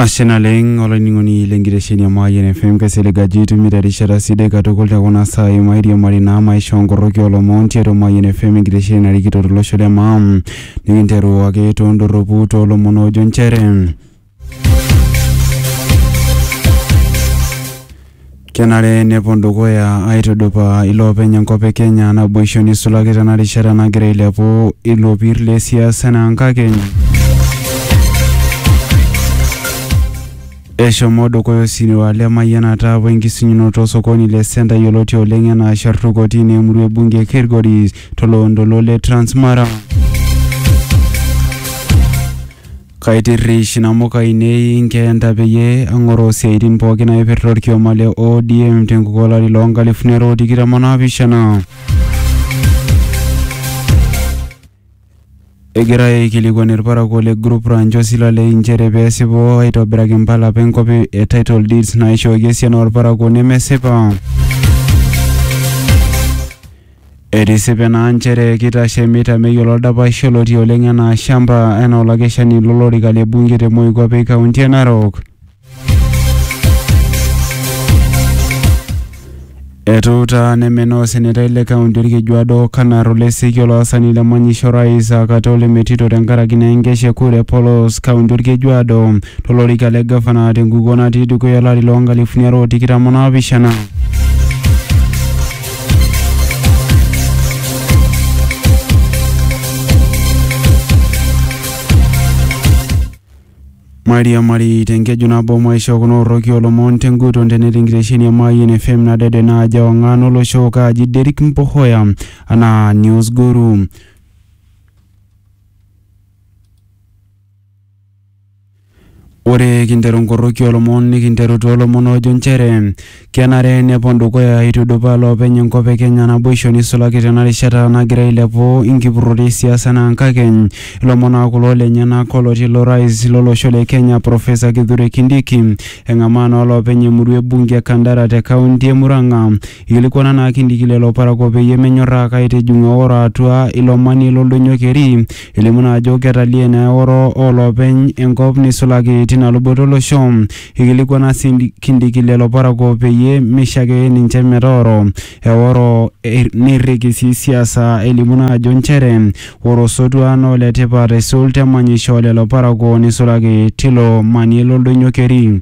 ashe naleng olainining'oni lenkitesheni e Mayian FM kaisilig ajo itumito erishata sidai katukul te kuna saai mairiamari naa maisha onkoroki olomon tiatua Mayian FM enkitesheni narikito tolosho le maa nikinteru ake tondorropu toolomon oojo nchere Kenare nepuo dukuya aitudupaa iloopeny enkop e Kenya naboisho nisulaki tena rishata nagira ailepu ilopir le siasa enaa nkakeny. Eshomo dukuya osirua le mayianata we nkisunyunoto osokoni le Senta yioloti oleng enaa Shartu kotini e murua e bunge e Kilgoris to loontoluo le Transmara. Kaitirrish inamuka ainei inkeenta peyie ang'oroo isiaaitin pooki naipirta olkioma le ODM tenkuko olari loo nkalifuni are o tikitam o naapishana. Egira aikilikuan ilparakuo le Group Ranch o Silalei inchere pee esipu aitobiraki impala apa enkop e title deeds naaishooki esiana oo lparakuo nemesipa. Etisipe naa nchere keitashe Mita Meyiolo oldapash olotii oleng enaa shamba enaa olakeshani lo lorika le bunge te Moikuape kaunti e Narok. Etuuta nemenaa osenetai le kaunti Olkejuado Kanar Oleseki olaasani le manyisho Orais Akate Ole Metito tenkaraki naa enkesha e kura e polos kaunti Olkejuado to lorika le gavana te nkukuo natii dukuya olari loo nkalifuni are o tikitam o naapishana. mairiamari tenkeju nabo maisho kuna orroki olomon tenguton tenetii enkitesheni e Mayian FM nadede naaji ewang'an olosho kaaji Derrick Mpohoya anaa News Guru. Ore kinteru nkoroki olomon nikinteru too lomon oojo nchere kenare nepon dukuya aitudupaa loopeny enkop e Kenya naboisho neisulaki tena rishata nagira ailepu inkipurrot e siasa enaa nkakeny. Ilomon aa kulo lenyenak olotii ilo rais lo losho le Kenya Professor Kithure Kindiki eng'amaa naa olopeny emurua e bunge e Kandara te kaunti e Murang'a Eikilikuana naa Kindiki lelo parakuo peyie menyorraa aitijing'u eoro atua ilo manie lo Ldoinyo Keri, elimu naa ajo ketaliee naa eoro oo loopeny enkop neisulaki tina luboto o losho. Eikilikuana sii Kindiki lelo parakuo peyie meishake ninche metooro eoro neirriki sii siasa elimu naa ajo nchere ore osotua naa ole tipat aisul te manyisho oo lelo parakuo neisulaki tilo manie lo Ldoinyo Keri.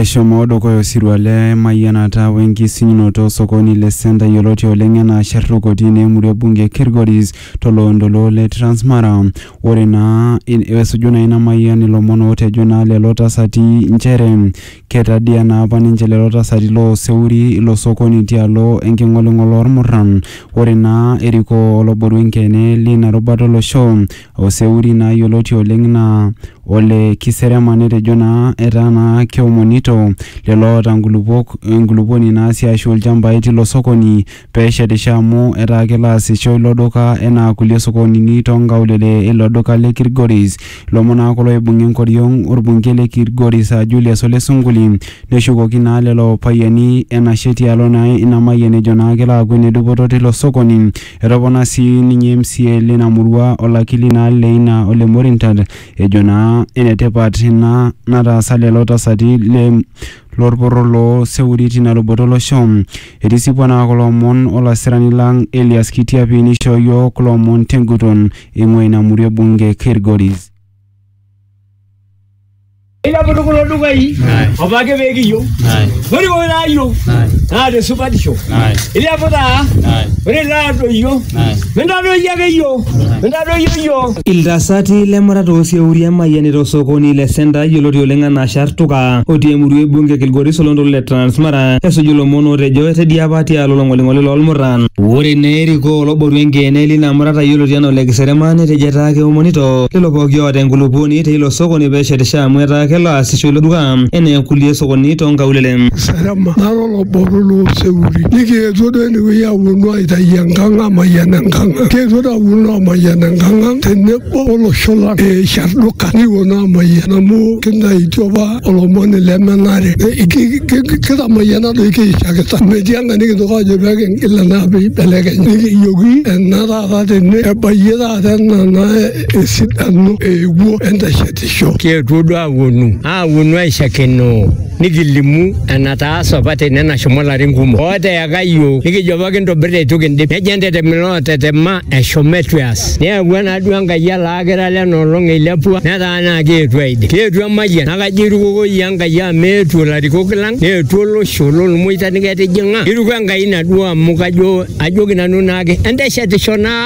Eshomo dukuya osirua le mayianata we nkisinyunoto o sokoni le Centre yioloti oleng enaa Sherruk otii ina emurua e bunge e Kilgoris to loontoluo le Transmara. Ore naa esuju naa ina mayian ilomon ootejo naa lelo tasati nchere ketadia naa apa ninche lelo tasati loo seuri ilo sokoni tialo enking'oling'ol oo lmurran. Ore naa erikoo olobore enkeene lina rubata o losho Oseuri naa yioloti oleng naa ole Kiserema netejo naa etaa naa keomonito lelo oota nkulupuok enkulupuoni naa sii aashu ilchambai tilo sokoni pee eshetisho amu etaa kelo aasisho ilo duka enaa kulie sokonini too nkaulele ilo duka le Kilgoris. Ilomon naa kulo oibung'a enkoriong orbungei le Kilgoris aa Julius Ole Sunkuli neshukoki naa lelo payiani enashe tialo naa ina mayian ejo naa kelo aaku enedupoto tilo sokoni Etopona sii ninye MCA leina murua olakili naa leina ole Morintat ejo naa enetipat ina nataasa lelo tasati le lorporro loo Seuri tina luboto olosho. Etisipua naa kulo omon olasirani lang Elias Kitiapi neishoo iyiook kulo omon tenguton eingua ina murua e bunge Kilgoris. Ilaputu kulo dukai opa ake pee kiyieu. Ore pooki naayieu naa te supatisho. Ilepu taa ore ilaadoyio mintadoyio ake iyiook mintadoyio iyiook. Iltasati lemurat oosieuri emayianita osokoni le Senta yioloti oleng anaa Shartuka otii emurua e bunge e Kilgoris oloontoluo le Transmara esuju ilomon ootejo etedia apa tialo olong'oling'oli loolmuran. Ore naa erikoo oloborua enkeene lina murata yioloti anaa Ole Kiserema netejo etaa keomonito. lelo pooki oota enkulupuoni te ilo sokoni pee eshetisho amu etaa kelo aasisho ilo duka enaa kulie sokonini too nkaulele. Sarema nara olobore loo seurin nikietuo duo ene wueji apuonu aitayu enkang amayian enkang ang. Kietuo duo apuonu aamayian enkang ang tenebo o losho lang e Sharduka nikipuonu aamayian amu kintayutuo apa olomoni le menare. Kitamayiana doi kiishakita amu metii enkae nikintoki aajo pee kingil enaa pee ibelekenya. Nikijoki ena taata tene ebayie taata. Ata nana esidano eewuo enteshetisho. Kietuo duo aawuonu, aawuonu aishakenoo, nikilimu enataasa apa tene nashomo larin kumok. Ooteyaka iyiook, nikijo apa kintobir eitu kindip. Nejo entetem ilootetema eshomo eitu eas. Neyawua naa duo Enkai ele akira lena olong eilepua netaa naa keetuo aidip. Keetuo emayian naa kajo eirukoko iyie Enkai amu meetuo ilarikok lang, neetuo olosho lolmoita niketijing'a. Eiruko Enkai ina duo amu kajo ajoki nanu naake enteshetisho naa.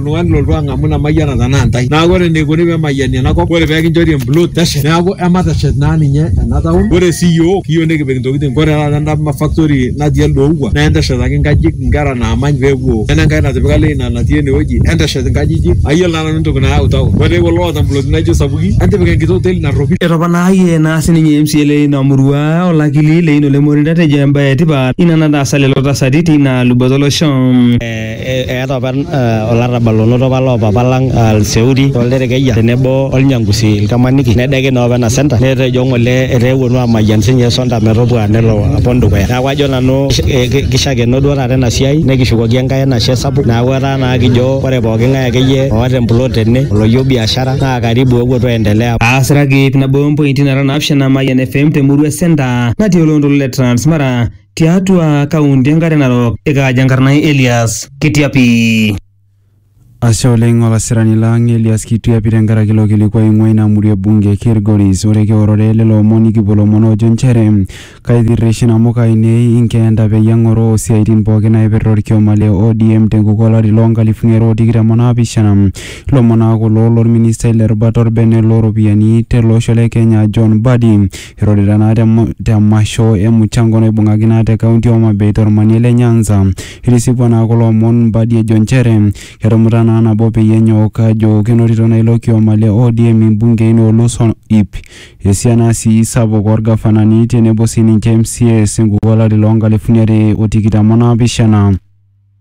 oltung'ani lolotu ang'amu ina mayiana tenaa intae. Neaku ore eneikuni pee emayiani ena kop, ore pee kinchori emplot teshet neaku emateshet naa ninye ena taon. Ore sii iyiook kiyieu nikipik intokitin, ore taata enda factory natii elde ouwa naa enteshetaki inkajijik inkera naamany pee epuo. Nena enkae natipika Leina natii ene wueji enteshet inkajijik. Ayiolo naa nanu entoki nayau taon. Ore doi kulo oota imploti naijo sapuki entipika enkiti oteli narropil. Etoponayie naa sininye MCA le ina murua olakili Leino Lemorinda etejo embae etipat ina nataasa lelo tasati teina luboto olosho. Eeta apa olarrabal onoto apa loo papa lang Lseuri o Lderekeyia tenebo o Lnyangusi Lkamaniki nedeiki naa opa ena senta netejo ng'ole etaa epuonu aamayian sii ninye Sonta metopua nelo apon dukuya. Neaku ajo nanu keishakeno duo taata ena siai nikishukoki Enkai enashe sapuk neaku etaa naa kijo ore pooki ng'ae ake iyie oata emplot tene oloyieu biashara naa karibu ewuo tuendelea. Aasiraki nabo o mpointi nara naapishana Mayian FM te Murua Centre natii oloontoluo le Transmara. tiatua kaunti enkare narok ikaaja enkarna ai elias kitiapi Ashe oleng olasirani lang Elias Kituyapi tenkaraki ilo kilikuai oing'ua ina murua e bunge e Kilgoris. Ore kiorore lelo omon nikipuo lomon oojo nchere kaitirrish inamuka ainei inkeenta peyie ang'oroo isiaaitin pooki naaipirta olkioma le ODM tenkukuo olari loo nkalifuni are o tikitam o naapishana. Ilomon aa kulo lolministai le rubata olbene loo ropiyiani tele osho le Kenya John Mbadi. Eirorita naa te te masho e muchango naibung'aki naa te kaunti o Homa Bay to lmanie le Nyanza. Eitisipua naa kulo omon Mbadi ejo nchere ketumuta naa nabo peyie enyok ajo kenotito naa ilo kioma le ODM imbungei noolus o iip, esiana sii sapuk oo lgafanani tenebo sii ninche MCAs enkukuo olari loo nkalifuni are o tikitam o naapishana.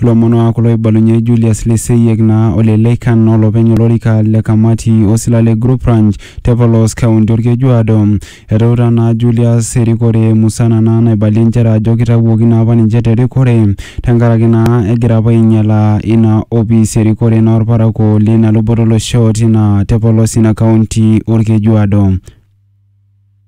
Ilomon aa kulo oibalunye Julius Leseyiek naa ole Leikan olopeny olorika le kamati osila le Group Ranch te polos kaunti Olkejuado. Etuutaa naa Julius erikore musana naa naibalie nchere ajo kitawuoki naa apa ninche te rikore tenkaraki naa egira apa ainyala ina opis erikore naa olparakuo leina luboto olosho tina te polos ina kaunti Olkejuado.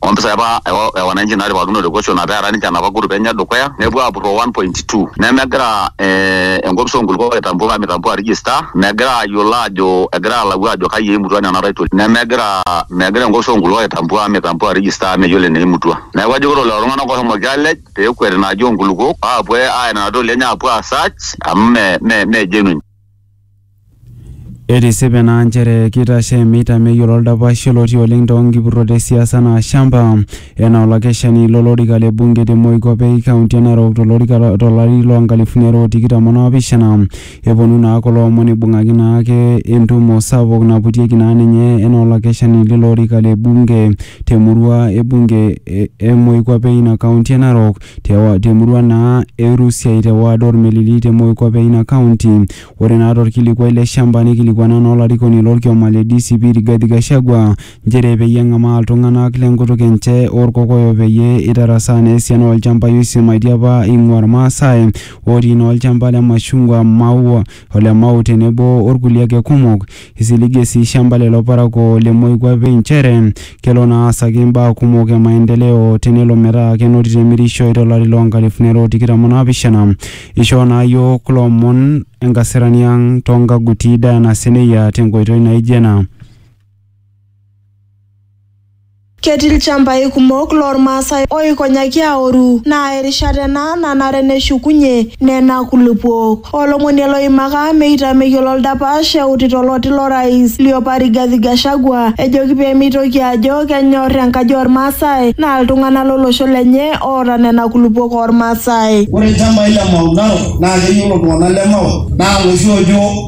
o mpisai apa e wananchi naaripakino te kosho naa peara ninche enapa group enye e dukuya nepuo aapurroo 1.2 nemegira eh, enkopis oo nkulupuok aitambua mitambua register megira aayiolo aajo egira alau aajo kai eimutua nena title nemegira megira enkopis oo nkulupuok aitambua mitambua register meyiolo eneimutua neeku ajoki ore lelo tung'anak ohomoki aalej peekuet ina aji oo nkulupuok aapuo aaya nena titoli enye aapuo aa search amu me me genuine. Etisipa ena nchere keitashe meita meyiolo oldapash yioloti oleng too nkipurrot e siasa anaa Shamba enaa olakeshani lo lorika le bunge te moikuape e kaunti e Narok to lorika to lari loo nkalifuni are o tikitam o naapishana. Eponu naa kulo omon eibung'aki naa ake entumo sapuk naputieki naa ninye enaa olakeshani leilo orika le bunge te murua e bunge e moikuape e ina kaunti e Narok. te murua naa e Rusiai te ward Ormelili te Moikop e ina kaunti. Ore naa torkilikuai le shamba neikilikuana naa olarikoni lo lkioma le DCP Rigathi Gachagua nchere peyie eng'amaa iltung'anak le nkutuk enche oo Lkokoyo peyie eitarasaa naa esiana oo lchambai oisimaitie apa eing'ua Ilmaasai ootii naa olchamba le mashungwa, maua, ole Mau tenebo orkulie ake kumok. Isiligie sii shamba lelo parakuo le moikuape inchere kelo naa aasaki imbaa kumok e maendeleo tenelo metaa kenotito emirishoi to lari loo nkalifuni are o tikitam o naapishana. Ishoo naa iyiook kulo omon enkasirani ang too nkaguti Diana Seneyia tenkoitoi naijo ena. Ketii ilchambai kumok loo Ilmaasai ooikonyaki aoru naa erishata ena nanare neshukunye nena kulupuok. Olomonie loimaka meita meyiolo oldapash eutito oloti lo rais liopa Rigathi Gachagua ejoki pee meitoki ajo kenyor enkaji oo Ilmaasai naa iltung'ana lo losho lenye oota nena kulupuok oo Ilmaasai. Ore ilchambai le Mau Narok naa keyiolo iltung'ana le Mau naa loshi oojo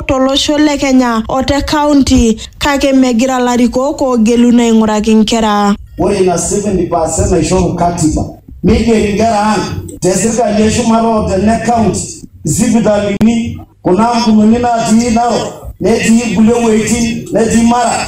tolosho le Kenya o te kaunti kake megira larikok oogeluno aing'uraki nkera. Ore ina 70 percent naishoru katiba neigeri nkera ang te sirkali e shumata o te ne kaunti, isipitalini, kuna ampunini natii Narok netii kulie wuejitin netii Mara.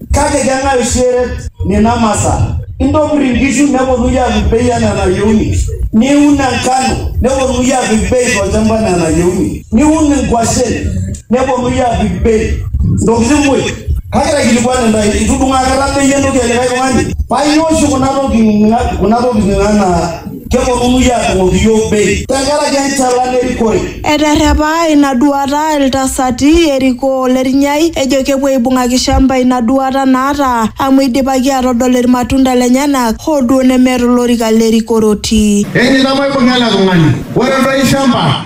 Kake keng'ae oshi eret nena masaa? Intobir inkishu neponunui aapik bei anaa enayieuni. Niun enkano neponunui aapik bei tolchamba anaa enayieuni. Niun inkwashen neponunui aapik bei. Intokitin muj. Kake aikilikuan intae, itudung'o akata bei entoki e likae tung'ani? Paa ainyoo oshi kuna tokitin anaa Keponunui aadung'oki iyiook bei. Tenkaraki enchalan erikore. Eterrepa ina duaata iltasati erikoo o Lernyai ejo kepuo aibung'aki Shamba ina duaata naata amu eidipaki aatodol ilmatunda lenyenak hoo duo nemeeta olorika le rikore otii. Enye nabo eibung'a ele tung'ani. Ore doi Shamba.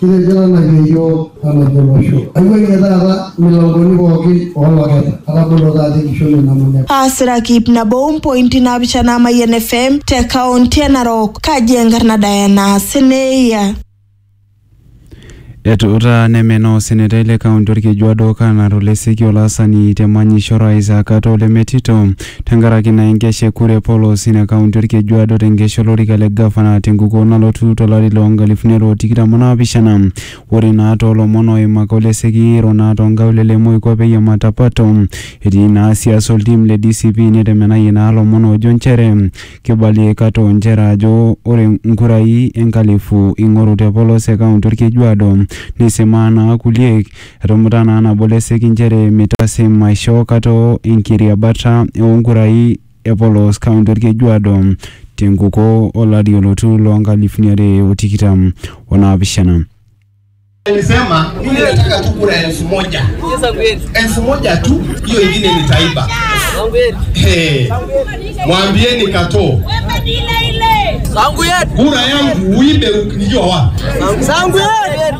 Kitejo tanaki iyiook olobolosho, aiwuang'ie taata imilankoni pooki oo loketa, atabolo taata enkishon e Namunyak. Aasiraki iip nabo o mpointi naapishana Mayian FM te kaonti e Narok, kaji enkarna Diana Seneia. Etuuta nemenaa osenetai le kaunti Olkejuado Okanaro Leseki olaasani te manyisho Orais Akato Lemetito Tenkaraki ina enkesha e kura e polos ina kaunti Olkejuado tenkesha olorika le gavana tenkukuo nalotu to lari loo nkalifuni are o tikitam o naapishana. Ore naa too lomon ooimaka o leseki eiro naa too nkaulele e moikuape e Yamatapato etii naa siasa o ltim le DCP netemenayie naa lomon oojo nchere keibalie aikata o nchere ajo ore nkurai enkalifu eingoru te polos e kaunti Olkejuado neisimaa naa kulie Etumuta naa nabo Leseki nchere meitasim aishoo kata o enkiriabata oo nkurai e polos kaunti Olkejuado te nkuko o lari olotu loo nkalifuni are o tikitam o naapishana. Alisema mimi nataka tu kura elfu moja elfu moja tu, hiyo ingine nitaiba. Hey, mwambieni Kato kura yangu uibe, ukijua wapi?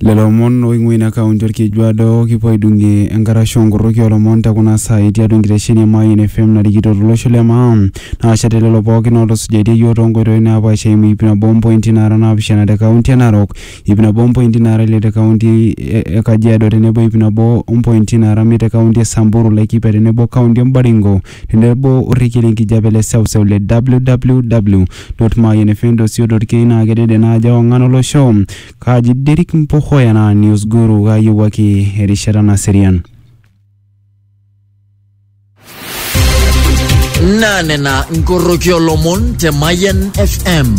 Lelo omon oing'ua ina kaunti Olkejuado kipuo aidung'ie enkarasha oonkorroki oolomon tekuna saai tiatua enkitesheni e Mayian FM narikito tolosho le Maa naashate lelo pookin ootusujaitia iyiook toonkoitoi naapaasha eimu iip nabo ompointi naara naapishana te kaunti e Narok, iip nabo ompointi naara ile te kaunti e Kajiado tenebo iip nabo ompointi naara imiet te kaunti e Samburu, Laikipia tenebo kaunti e Baringo. Tenebo orrekie lenkijape le seuseu le www.mayianfm.co.ke naa kedede naa ajo ewang'an olosho. Kaaji Derrick Mpohoya naa News Guru kaayiewuaki erishata naserian. Naa nena nkoroki olomon te Mayian FM.